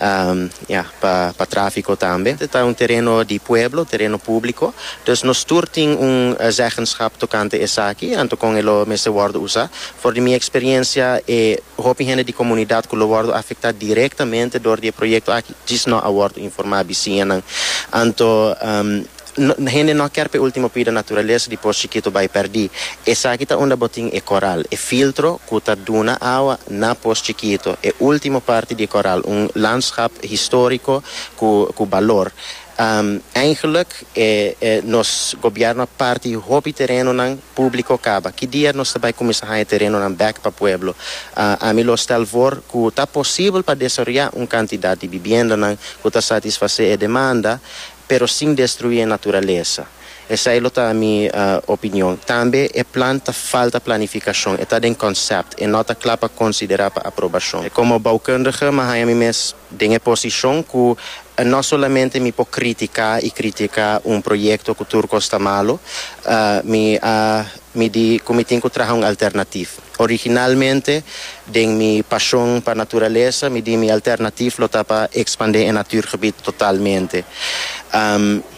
Ya, pa pa tráfiko tambe. E ta un tereno di pueblo, tereno públiko. Dus nos tur tin un zeggenschap tokante esaki, anto kon e lo mester wòrdu usá. For di mi eksperiencia, e hopi hende di komunidat ku lo wòrdu afektá direktamente dor di e proyekto aki, djis nò a wòrdu informá bisiñanan. Anto. Hende no a kier pa e ultimo pida naturalesa di pos chikito bai perdi. Esaki ta unda bo tin e koral, e filtro ku ta duna awa na pos chikito, e ultimo parti di e koral, un landschap historico ku ku balor. Eigenlik e nos gobièrnu a parti hopi terenonan públiko kaba. Ki dia nos ta bai kuminsá haña terenonan bèk pa pueblo? Ami lo stèl for ku ta posibel pa desaroyá un kantidat di bibiendanan ku ta satisfasé e demanda, pero sin destruí e naturalesa. Esei lo ta mi opinion. Tambe e plan ta falta planifikashon, e ta den konsèpt, e nò ta kla pa konsiderá pa aprobashon. Komo boukundige mi a haña mi mes den e posishon ku nò solamente mi por kritiká i kritiká un proyekto ku tur kos ta malu, mi a midí ku mi tin ku traha un alternativ. Originalmente, den mi pasion pa naturalesa, mi di mi alternatif lo ta pa expande e natuurgebied totalmente.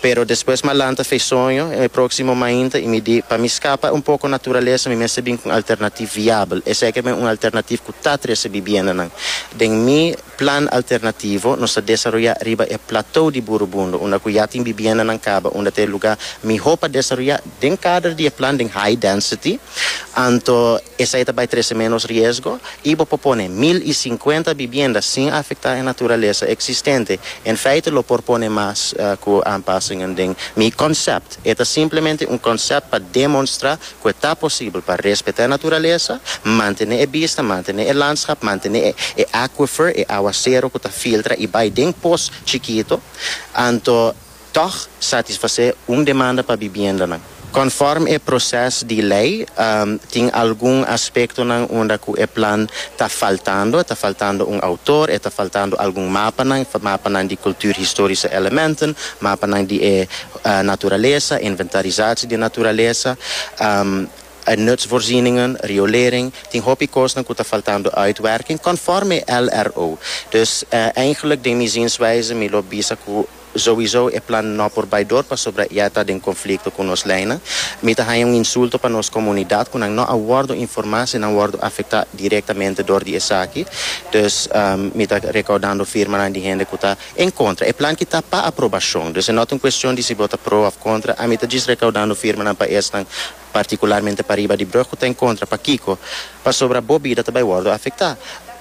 Pero despues mi a lanta Fesoño e proximo mainta y mi di, pa mi scapa un poco naturalesa mi mester bin cu un alternatif viabel, esey ke ta bin un alternatif cu ta trece bibiendanan den mi Plan alternativo nos ta desaroyá riba e Platou di Burubundo, unda ku ya tin bibiendanan kaba, unda ta e lugá mihó pa desaroyá. Den kader di e plan den high density, anto esei ta bai trese ménos riesgo i bo por pone mil i sinkuenta bibienda sin afektá e naturalesa eksistente. En feite lo por pone mas ku aanpasingen den mi konsèpt. E ta simplemente un konsèpt pa demonstrá ku e ta posibel pa respetá e naturalesa, mantené e bista, mantené e landschap, mantené e e aquifer, e awasero ku ta filtra i bai den pos chikito, anto tòg satisfasé un demanda pa bibiendanan. Kònfòrme e proses di lei, tin algun aspektonan unda ku e plan ta faltando, e ta faltando un outor, e ta faltando algun mapanan, mapanan di kulturhistorische elementen, mapanan di e. Naturalesa, inventarisatie di naturalesa, nutsvoorzieningen, riolering, tin hopi kosnan ku ta faltando uitwerking conforme LRO. Dus eigenlijk den mi zienswijze mi lo bisa ku souiso e plan no por bai dor pasobra ya ta den conflicto ku nos leynan. Mi ta haña un insulto pa nos comunidad ku nan no a wordo informa si nan wordo afecta directamente dor di esaki. Dus mi ta recaudando firmanan di hende ku ta En kontra, e plan ki ta pa aprobashon. Dus e no ta un kuestion di si bo ta pro òf kontra. Ami ta djis rekaudando firmanan pa esnan, partikularmente pariba di Brug ku ta en kontra. Pakiko? Pasobra bo bida ta bai wòrdu afektá.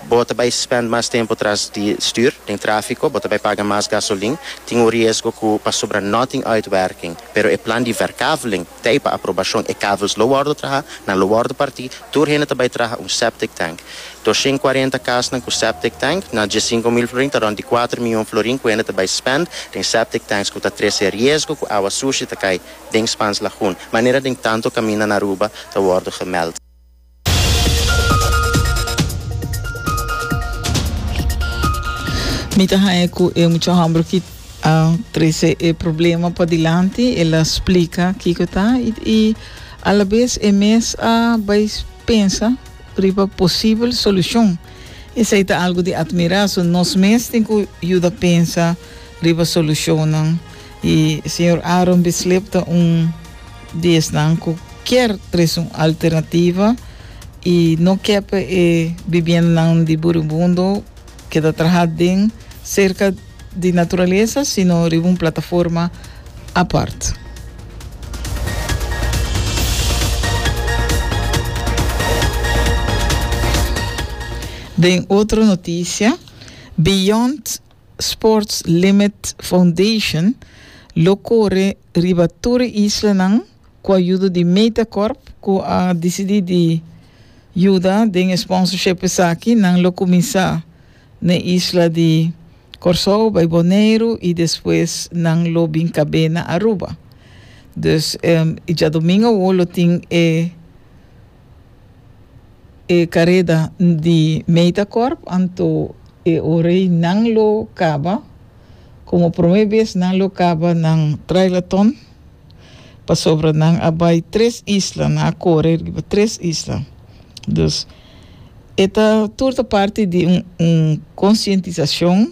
Bo ta bai spènt mas tempu tras di stür, den tráfiko, bo ta bai paga mas gasolin. Tin un riesgo ku pasobra no tin uitwerking. Pero e plan di Verkaveling. Tei pa aprobashon e kavels lo wòrdu trahá, nan lo wòrdu partí, tur hende ta bai traha un septic tank. Doshen kuarenta kasnan ku septic tank, na dies sinku mil florin ta rònt di kuater mion florin ku hende ta bai spènd den septic tanks ku ta trese riesgo ku awa sushi ta kai den Spans Lagoon, manera den tantu kaminda na Aruba ta wòrdu gemèld. Mi ta haña cu e mucha homber ki a trece e problema padilanti el a splica kico ta y, y a la vez e mes a bay pensa riba posibel solucion. Esey ta algo di admira. So nos mes tin cu yuda pensa riba solucionnan y señor Aaron Bislip ta un di esnan cu kier tres un alternativa y no kep e bibiendanan di Buribundo keda traha den cerca di naturaleza sino riba un plataforma apart. Den otro noticia, Beyond Sports Limit Foundation lo kore riba tur e islanan ku ayudo di Metacorp ku a disidi di yuda den e sponsorship esaki. Nan lo kuminsá na e isla di Kòrsou, bai Boneiru i despues nan lo bin kab'é na Aruba. Dus djadomingo awo lo tin e. e careda di Metacorp, anto e ora ei nan lo caba. Como prome bes nan lo caba nan Trailathon, pasobra nan a bay tres isla, nan a core riba tres isla. Dus e ta tur ta parti di un un concientisacion.